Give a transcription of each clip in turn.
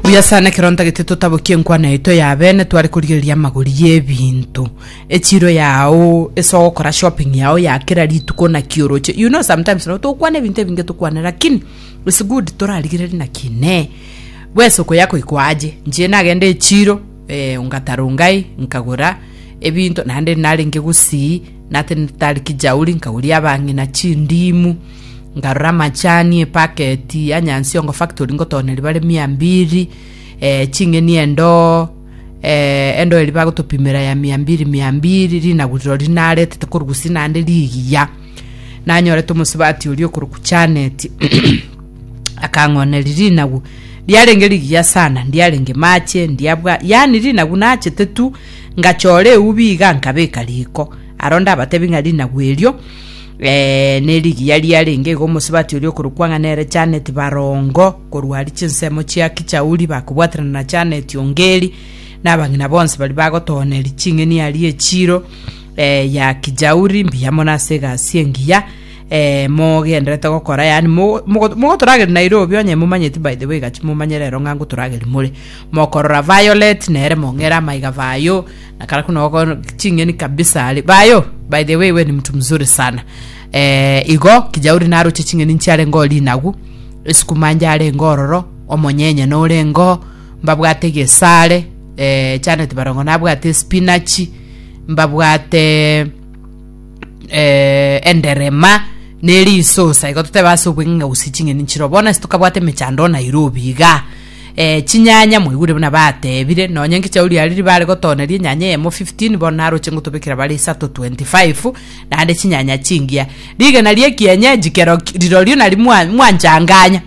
buya sana ekero ntagete totabokie enkwana yaito ya bene tware korigereria amagori y'ebinto echiro yao ase ogokora shopping yao ya kera rituko naki oroche you know sometimes no tokwana ebinto ebinge tokwane lakini it's good torarigereri naki inee bwesoko yako iko aje nche nagende echiro Eh, ngatarungai, nkagora ebinto naende narenge gusii, natenetari kijauri, nkaguria abang'ina chindimu, nkarora amachani, epaketi ya Nyansiongo Factory ngotona riba ria mia mbiri, eh, ching'eni endoo, eh, endoo eri bagotopimera ya mia mbiri mia mbiri, rinaguriro rinaretete korwa gusii naende rigiya. Nanyorete omosubati oria okoroku Janeti. akang'oneria rinagu riarenge rigiya sana ndiarenge mache ndiabwa yani rinagu nachete tu ngachora eubi iga nkabeka riko aro ndabatebi ng'a rinagu erio eh, nerigiya riarenge igo omosibati oria okorokwa ng'a nere Janet Barongo korwa ari chinsemo chia Kichauri bakobwaterana na Janet Ongeri nabang'ina bonsi bari bagotooneri ching'eni aria echiro eh, ya Kijauri mbuya mono ase egasi engiya eh, mogenderete gokora, yaani mo- mogo- mogotorageri Nairobi, onye momanyeti by the way gaki momanye rero ng'a ngotorageri more, mokorora Violet nere mong'ere amaiga Vayo, na kara kuna ogo ching'eni kabisa are, Vayo, by the way we ni mtu mzuri sana, eh, igo kijauri naroche ching'eni nchiarenge oo rinagu, esukuma njarenge ororo, omonyenye norenge oo, mbabwate egesare, eh, Janet Barongo nabwate espinachi, mbabwate. eh, enderema neri isosa igo toteba ase obweng'enga gose ching'eni nchiro bono ase tokabwate emechando o nairobi iga eh, chinyanya mwaigure buna batebire nonya ngicha ori ariri bare gotoneria enyanya eyemo 15 bono naroche ngotobekera bare isato 25 naende chinyanya chingiya rigena rie kienyeji kero rirorio nari mwa- mwanchanganya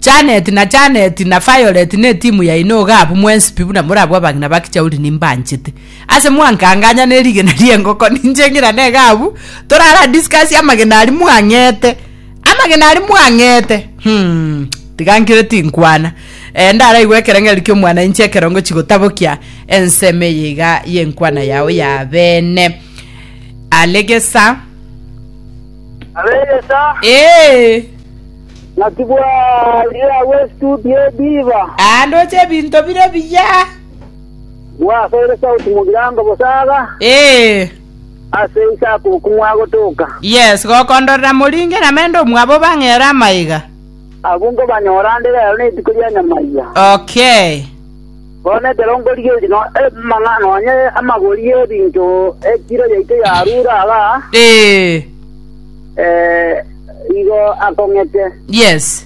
Janet na Janet na Violet ne timu yaino iga abwo mwensipi buna morabwo abagina bakichauri nimbanchete Ase mwankanganya ne rigena ri'engoko ninche ng'ira nega abwo torara discuss amagena aria mwang'ete amagena aria mwang'ete humm tiga nkire tinkwana eh, ndaraigwe ekerengerio ki'omwanainche ekero ngochi gotabokia ensemo eye iga y'enkwana yao ya bene alegesa Alegesa, ee naki bwa ye awe studio diva. aa ndoche ebinto bire biya Gwasoire sauti mogirango bosaga, Ee, ase Isaka okwo mwagotoka. yes, gokondorera moringe namende omwabo bang'ere amaiga. Abwo nkobanyora ande rero netuko ria nyamaiga. Okay. Bono ekero nkorigereria no- amang'a- nonye amagori y'ebinto ekiro yaito yarure aba, Ee, eh, igo akong'ete. yes.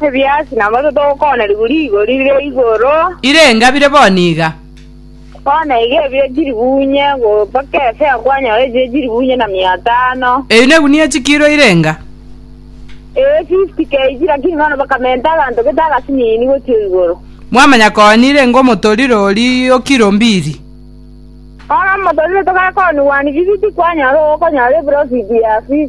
Ebiasi namoto togokoonerigwa rigori ria igoro. Ire engabire bono iga. Bono iga ebire chiribuunye, mpaka efe akwanyora echire chiribuunye na mia atano. Ebi negunia chikiiro ire enga. Ee, 50 kg, lakini bono bakamenta aganto gete agasinini gochia igoro. Mwamanya koa nire enga omotorire oria o kiro mbiri. Bono omotorire togakoonigwa nibibiti kwanyora ogokonyora eprofiti ya 50.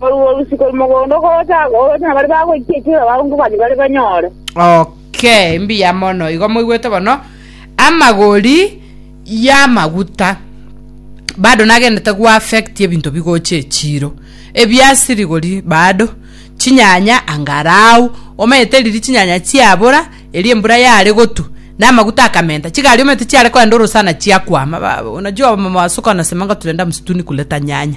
Korwa obotuko mogondo gocha- gocha nabare bagoikia ekiagera abakungu bane bare banyore. Okay, mbuya mono. Igo moigwete bono amagori y'amaguta bado nagendete goaffect ebinto bigocha echiro. Ebiasirigori bado, chinyanya angarao, omanyete riria chinyanya chiabora, eria embura yare gotu, na amaguta akamenta, chigari omanyete chiare kogenda orosana chiakwama. Ba- Unajua wamama wa suka wanasemaga tulienda msituni kuleta nyanya.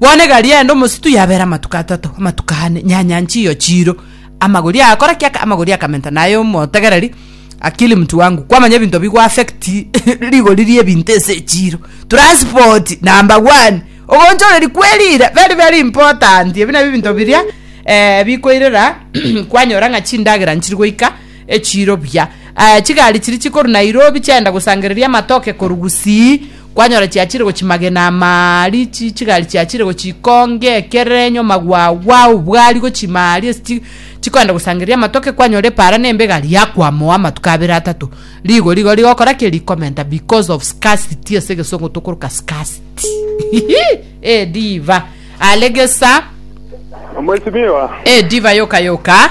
Bono egari yaye ende omositui yabeera amatuko atato, amatuko ane, nyanya nchiyo chiiro, amagori aa akora ki? Aka- Amagori akamenta naye omotegereri, Akili mtu wangu, kwamanya ebinto bigo affect rigori ri'ebinto ase echiiro, transport, number one, ogonchoreri kwerira, very very important, ebi nabio ebinto biria eh, bikoirera kwanyora ng'a chindagera nchiri goika echiiro buya. Aya chigari chiri chikoru Nairobi chiagenda gosangereria amatoke koru Gusii, Kwanyora chiachire gochimagena amaari, chi chigari chiachire gochikonge ekerenyo, magwagwa, obwari gochimaari ase chi chikoenda gosangereria amatoke, kwanyora epaara na embega riakwamoa amatuko abere atato. Rigo rigo rigokora ki? Rikomenta because of scarcity ase egesongo tokoroka scarcity. Eh diva. Are gesa. Mwesimiwa. Eh diva yoka yoka.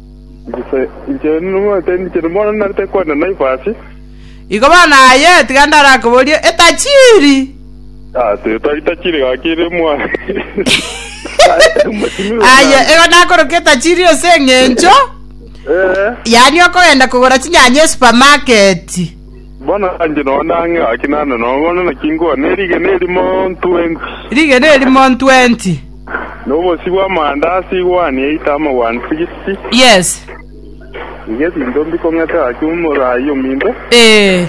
Gose inche nimomanyete ninche bono narete kwenda Naivas? Igo bono aye tiga ndarakoborie etachiri. Etachiri gaki ere mwane. Aye igo nakoroka etachiri ase eng'encho, yaani okogenda kogora chinyanya esupamaketi. Bono inche nonya nang'e gaki naende nonya bono, naki nkoa nerigena erimo ntwenti. Rigena erimo ntwenti. Na obosio bw'amanda ase igwani eito amagwani sigisi. Yes. Iga ebinto mbikong'ete gaki omoraai ominto. Ee.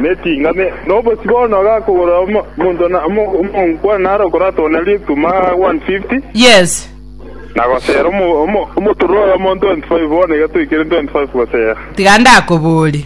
Na etinga ne, na obosio bono gakogora omo, omonto na, omo, omonkwa nare okoratogana rituma 150. Yes. Na gosera omo, omo, omotura oyomo 25 bono iga toikire 25 gosera. Tiga ndakoborie.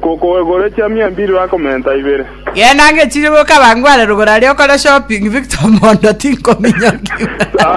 Kokoegora chiamia mbiri bakomenta ibere. Genda ngechirie goika abango are rogoro aria okore shopping Victor mondo tinkominyokigwa.